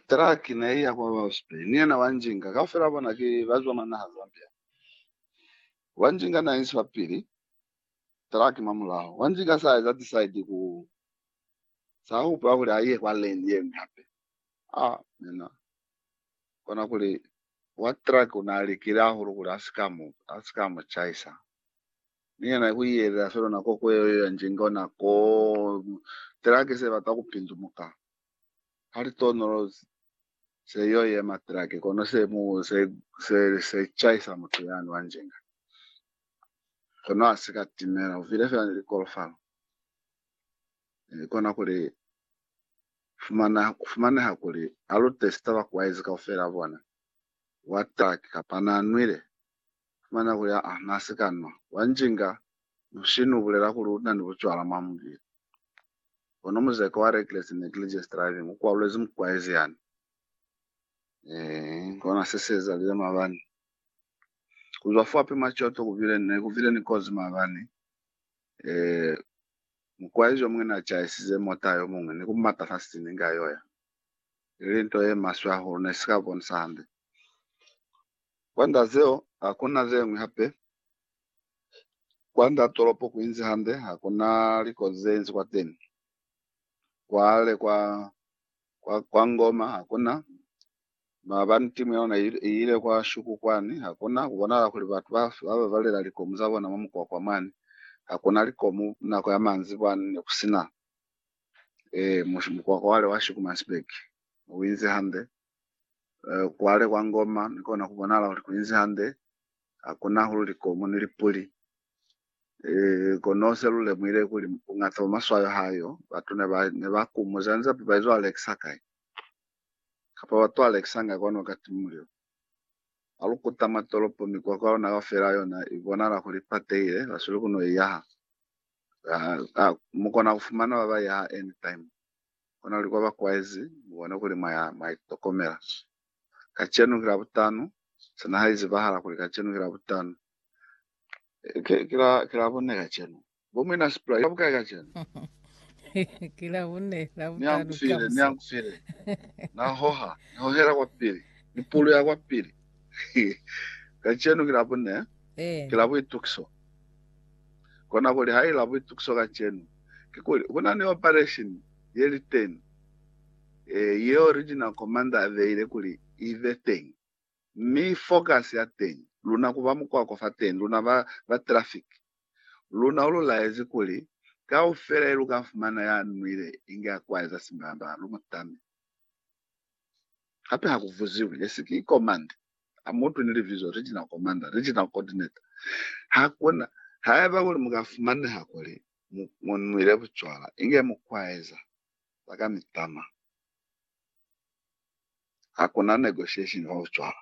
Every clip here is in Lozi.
Traki ne i ya kwa Bausbey, ni yena Wanjinga. Kaufela bona ki ba zwa mwa naha Zambia. Wanjinga n'a inzi fa pili, traki mwa mulaho. Wanjinga s'a eza decide ku, s'a hupula kuli a ye kwa lane ye ñwi hape. A mina, kona kuli, wa traki u n'a likile hahulu kuli a si ka mu, a si ka mu chaisa. Ni yena ku iyelela fela nako ku yeo, Wanjinga ona koo, traki se bata ku pindumuka. ha li tonolozi, se yo yema trake kono se mu se se, se chaisa mutu yani wa njenga kono ha si ka timela uvile fela ni likolofalo e, kona kuli fumana kufumaneha kuli a lu testa bakuwaizi kaufela bona wa trake kapa na nwile fumana kuli aa na si ka nwa wa njinga mushini u bulela kuli u na ni bucwala mwa mubili. Kono muzeko wa reckless and negligence driving u kwalulezi mukwaezi yani. Eh, kona se se ezalile mabani. Kuzwa fo api machoto kuvile ne kuvile ni kozi mabani. Eh, mukwaezi yo mungwe na chaisize mota yo mungwe ni kumata fa sitini nga yoya. Ili nto ye maswe hahulu ne sika bonisa hande. Kwanda zeo, hakuna zengwi hape Kwa nda tolopo ku inzi hande, ha ku na likozi ze inzi kwateni. Kwale kwa, kwa, kwa Ngoma ha ku na, maabani timu ya luna i i ile kwa Shuku kwani, ha ku na, ku bonala kuli batu ba, ba babalela likomu za bona mwa mukwakwa mwani. Ha ku na likomu nako ya manzi kwani, ne ku si na. Ee, mu, mukwakwa wale wa Shuku Mansberg, u inzi hande. eh, kwale kwa ngoma ni kona kubonala kuli kuinzi hande, hakuna hulu likomo ni lipuli. Eh, kono se lulemuhile kuli bungata bwa maswayo hayo batu ne ba ne ba kumuza nza ba izo alekisa kai kapa batu alekisa nga kwano ka timulio alukuta matolopo mikwakwa yona kaufela yona ibonala kuli patehile basweli kuno iyaha mukona kufumana baba iyaha anytime kona kuli kwa ba kwaizi mu bone kuli mwa ya mwa itokomela. Kacenu ki Labutano, sina ha izibahala kuli kacenu ki Labutano. Ki, ki la, ki Labune kacenu. Bo Muina Sipula, iba bukai kacenu? Ki Labune, Ni ya Labutano kufile, ni ya kamusi. kufile. Na hoha, ni hohela kwa pili. Ni puluya kwa pili. Kacenu ki Labune, ki Eh, la buitukiso. Kona kuli ha i la buitukiso kacenu. kikuli kuna ni operation yeliteñi yeo Regional Commander abeile kuli ibe teñi, mi focus ya teñi luna kuba mukwako fa teñi, luna ba ba traffic. Luna ululaezi kuli kaufela yeluka fumana ya nwile inge akwaeza simbamba, lumutame. Hape ha ku vuziwi, Ye si ki komanda? Ha mu utwi ni libizo Regional Commander, Regional Coordinator? Hakuna. Haiba kuli mu ka fumaneha kuli mu, mu nwile bucwala, inge mu kwaeza za ka mitama. Hakuna negotiation fa bucwala.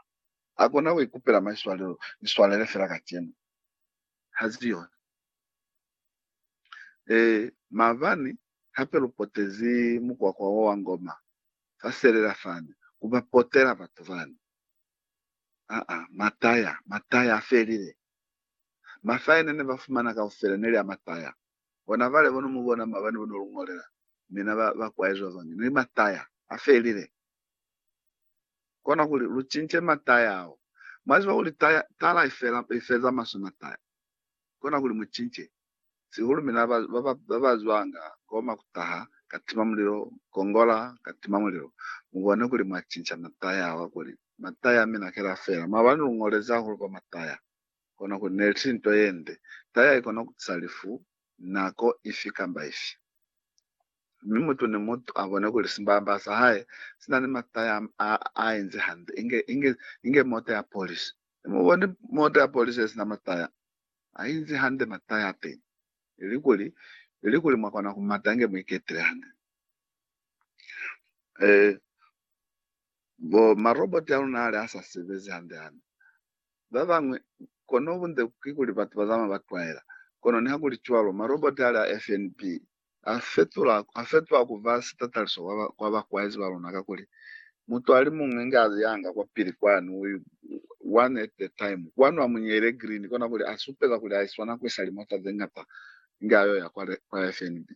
Hakuna ku ikupela maiswalelo, ni swalele fela kacenu. Hazi yona. Ee, maabani, hape lu potezi mukwakwa wo wa ngoma, sa selela fani ku ba potela batu bani. Aa, mataya, mataya a felile. Mafaya ne ne ba fumana kaufela ne li a mataya. Bona bale bo no mu bona mwa bani bo no lu ñolela mina ba, ba kwaezi ba bañwi. Ne li mataya a felile. Kona kuli lu cince mataya ao. Mwa ziba kuli taya, tala i fela, i feza maswe mataya. Kona kuli mu cince. Sihulu mina ba ba ba zwanga koma ku taha ka tima mulilo, kongola ka tima mulilo. Mu bone kuli mwa cinca mataya awa kuli mataya a mina kela fela. Maabani lu ngolezi hahulu kwa mataya. Kona kuli neli tili nto ye nde. Taya ikona ku tisa lifu nako ifi kamba ifi. Mi mutu ni mutu a bone kuli simbamba sa hae si na ni mataya a a inzi hande, inge, inge, inge mota ya polisi. Mu boni mota ya polisi ye sina mataya? ha inzi hande mata ya teñi, ilikuli, ilikuli mwa kona ku mata inge mu iketile hande. Ee, bo ma roboti a luna hali a sa sebezi hande hande. Ba bañwi, kono bunde kikuli batu ba zamaya ba twaela. Kono nihakulicwalo, ma roboti hali a FNB a fetula, a fetwa ku ba sitataliso kwa, kwa bakwaezi ba luna, kakuli mutu ali muñwi inge a yanga kwa pili kwanu, one at a time, kwanu a mu nyeile green, kona kuli a supe kakuli a iswana ku isa limota ze ñata inge a yo ya kwa, kwa FNB.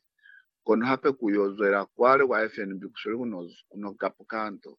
Kono hape ku yo zwela kwale kwa FNB ku sweli ku no, ku no kapuka nto.